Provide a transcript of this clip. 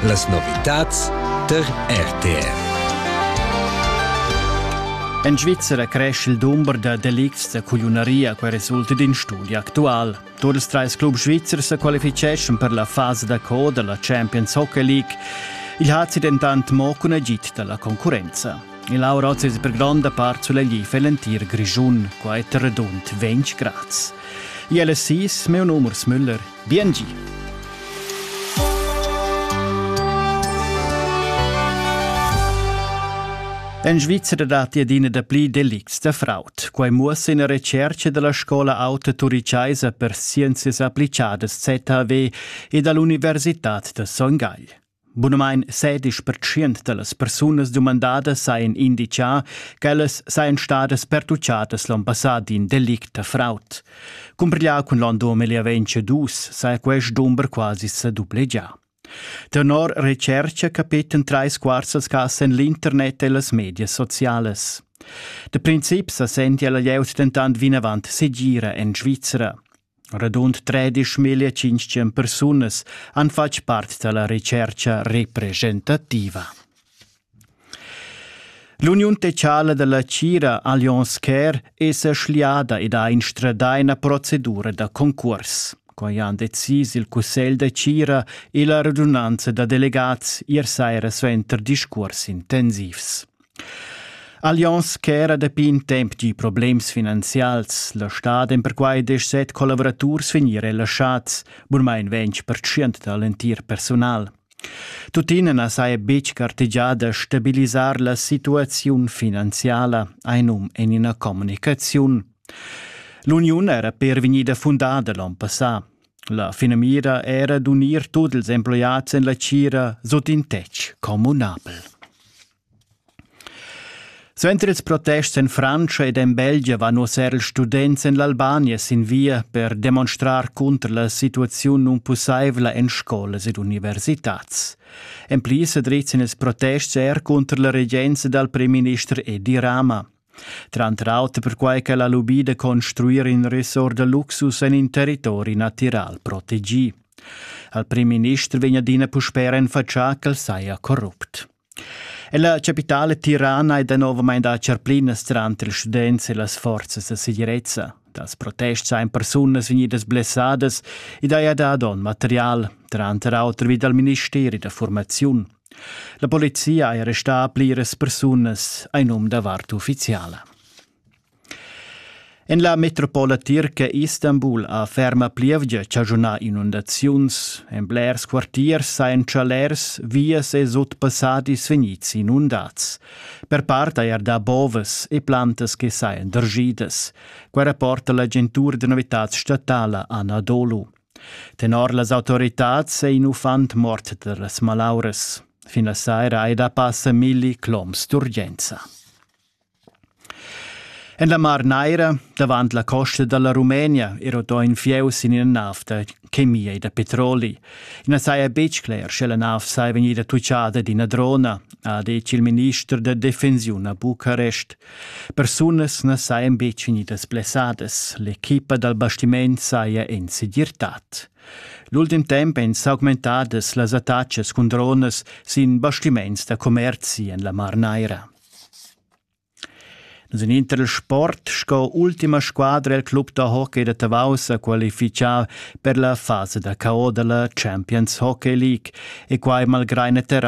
Las novitads tar RTR. En Svizzera cresce il dumber da delicts da culiunaria che resulta d'in studi actual. Tur ils trais clubs svizzers sa qualificeschan per la fasa da co della Champions Hockey League. Il hazi dentant mo cun agid dalla concurrenza. Il Auroz es per gronda part sull'egli für l'entir Grischun, qua è redund 20 grads. ILSIS, meu numers Müller, Biengi! En Svizra datti adina dapli delicts da fraud. Quai muossa ina retscherca dalla scola auta turichaisa per scienzias applicadas ZHW e dall'Universitad da Son Gagl. Bunamain sedisch pertschient da las persunas dumandadas sajan inditgà ch'ellas sajan stadas pertutgadas l'onn passà d'in delict da fraud. Cumpiglià cun l'onn 2022 saja quest dumber quasi sa dublegià. Tenor recerca capetan trais quarts als cas en l'internet e las medias socialas. Da princip sa sentia la glieud dentant vinavant segira en Svizra. Radund tredischmillia tschintg persunas han fatg part da la retschertga representativa. L'uniun techala da la Cira Allianz Care è sa schliada ed ha instradà ina procedura da concurs. Quai han decis il cussegl da Cira e la radunanza da delegats ier saira suenter discurs intensivs. Allianz ch'era dapi in temp gi problems finanzials. La stad en perquai desch set collavuraturs vegnir relaschats, burmain ventg percent da l'entir personal. Tuttina na saja betg gartegià da stabilisar la situaziun finanziala, einum en ina communicaziun. L'uniun era per vegnida fundada l'on passà. La finamira era d'unir tut ils emploiads en la tgira sut in tetg communabel. Suenter ils protests en Frantscha ed en Belgia van uss er ils students en l'Albania sin via per demonstrar cunter la situaziun nunpussaivla en scolas ed universitads. En pli sa drizzan ils protests er cunter la regenza dal primminister Edi Rama. tranter auter perquai ch'el ha lubì da construir in ressort da luxus en in territori natiral protegì. Al primminister vegn adina puspè renfatschà ch'el saja corrupt. La capitale tirana è danovamain da charplinas tranter ils students e las forzas da segirezza. Dals protests ein persunas vegnidas blessadas ed haja dà donn material, tranter auter vi dal ministeri da formaziun. La polizia è restà a pliras persunas en num da vart uffiziala. En la metropola tirca Istanbul ha ferma plievgia chaschunà inundaziuns. En blers quartiers sajan chalers, vias e sutpassadis vegnids inundads. Per part hai er dà bovas e plantas che sajan dergidas. Quai rapporta l'agentur da novitads statala Anadolu. Tenor las autoritads è in uffant mort da las malauras. Fin la saira è da passa milli cloms d'urgenza. En la Mar Naira, davant la costa dalla Rumenia, era da in fieu sin ina nav da chemia e da petroli. I na saja betg cler, sche la nav saja vegnida tuccada d'ina drona, ha detg il minister da defensiun a Bucarest. Persunas na sajan betg vegnidas blessadas, l'equipa dal bastiment saja en segirtad. L'ultim temp èn s'augmentadas las attacas cun dronas sin bastiments da commerzi en la Mar Naira. Nus en intersport sco ultima squadra il club da hockey da Tavau sa qualifichà per la fasa da cao da la Champions Hockey League e quai malgrà in terra